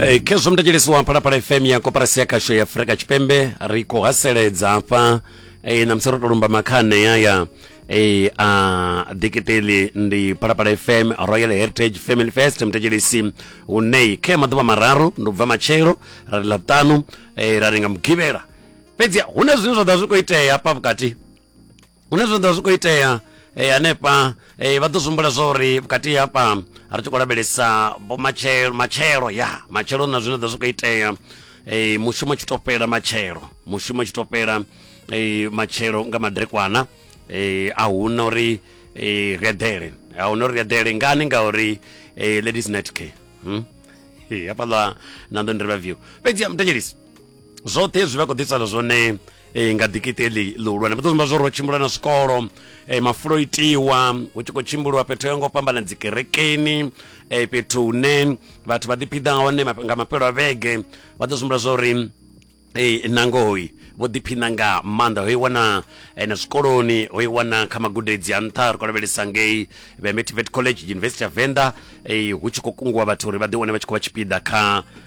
e, khezwo mudetshelesi wa phalaphala fm ya koporasi ya khasho ya afurika tshipembe ri khou haseledza hafha e, na musi ro to lumba makhane ya ya e, a dikiteli ndi phalaphala fm royal heritage family fest mudetshelesi unei khe maḓuvha mararu ndi ubva matshelo ra ri ḽaṱanu e, ra ri nga mugivhela fhedzi hu na zwine zwa ḓa zwi khou itea hafha vhukati hune zwa ḓo zwi khou itea eh, hanefha eh, vha ḓo zwimbula zwa uri vhukati hafha ri tshi khou lavhelesa matshelo matshelo ya matshelo na zwine ḓo zwi khou itea eh, mushumo tshi to fhela matshelo mushumo tshi to fhela eh, matshelo nga madrekwana eh, a huna uri eh, ri eḓele a huna uri ri eḓele ngani ngauri eh, ladies night care hmm? hafhaḽa na ndo ndiri vha view fhedzi mutetshelisi zwoṱhe hezwi vha khou ḓisana zwone e, nga dikiti eḽi ḽihulwane vha ḓo zimba zwo ro tshimbula na zwikolo e, mafulo itiwa hu tshi khou tshimbuluwa fhethu yo ngo fhambana dzikerekeni e, fhethu hune vhathu vha ḓiphiḓa hone nga mafhelo a vhege vha ḓo zwimbula zwa uri e, nangoi vho ḓiphina nga maanḓa ho i wana na zwikoloni ho i wana kha magudedzi a nṱha ri khou lavhelesa ngei vemetivet college university of venda hu tshi khou kungiwa vhathu uri vha ḓi wane vha tshi khou vha tshipiḓa kha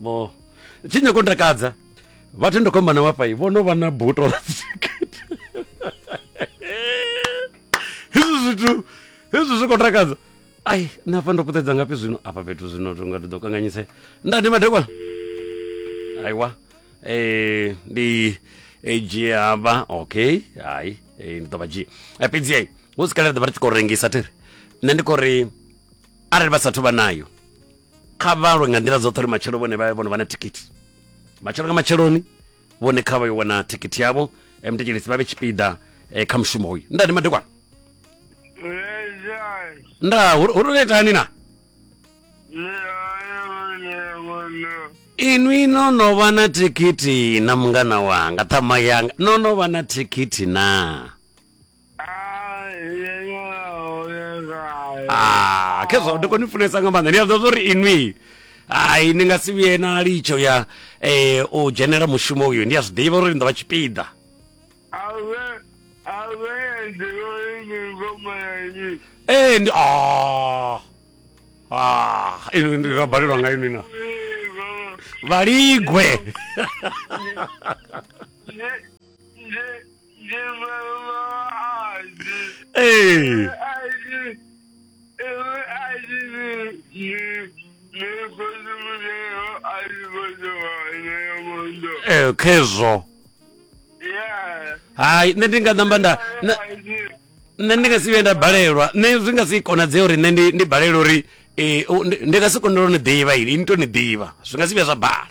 vho tshi nyako u takadza vhathu ndo khomba na wafai vho no vha na buto ḽa dzikete hezwi zwithu hezwi zwi khou takadza ai nṋe hafha ndo puṱedza ngafhi zwino afha fhethu zwino tonga ndi ḓo kanganyise nda ndi madekwana aiwa eh ndi edzhie hafha okay hai eh, ndi ḓo vha dzhia Eh, fhedzi ai hu si kalele ḓo vha ri tshi khou rengisa thiri nṋe ndi khou ri arali vha sathu vha nayo kha vha lwe nga nḓila dzoṱhe uri matshelo vhone vha vhone vha na thikhithi matshelo nga matsheloni vhone kha vha yo wana thikhithi yavho eh, mtekelisi vha vhe tshipiḓa eh, kha mushumo uyu ndani madekwana nda hu hu ri itani na inwi no no vha na thikhithi na mungana wanga ṱhama yanga no no vha na thikhithi na Ah, khezwa ndi koni funesa nga maanḓa ndi a ḓivha uri inwi hai ni nga si vhuye na litsho ya eh, u dzhenela mushumo uyu ndi a zwi ḓivha uri ni ḓo vha tshipiḓa ee ndi ah, ah, inwi ndi nga balelwa nga inwi na vhaligwe Ee. Eh, khezwo hai nṋe ndi nga namba nda na- nṋe ndi nga si vhuye nda balelwa nṋe zwi nga si konadzee uri nṋe ndi ndi balelwa uri eh, u- ndi- ndi nga si kone uri ni ḓivha ili ni to ni ḓivha zwi nga si vhuya zwa bala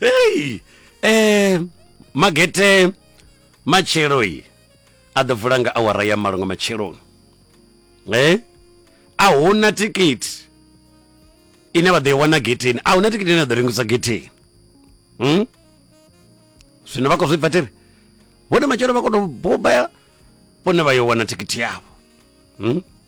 hey eh magete matshelo yi a ḓo vula nga awara ya malo nga matsheloni eh a huna tikiti ine vha ḓo i wana getheni a huna tikiti ine a ḓo rengisa getheni hmm? zwino vha khou zwi bva tere vhone matshelo vha kono bobaya vhone vha yo wana tikiti yavho hmm?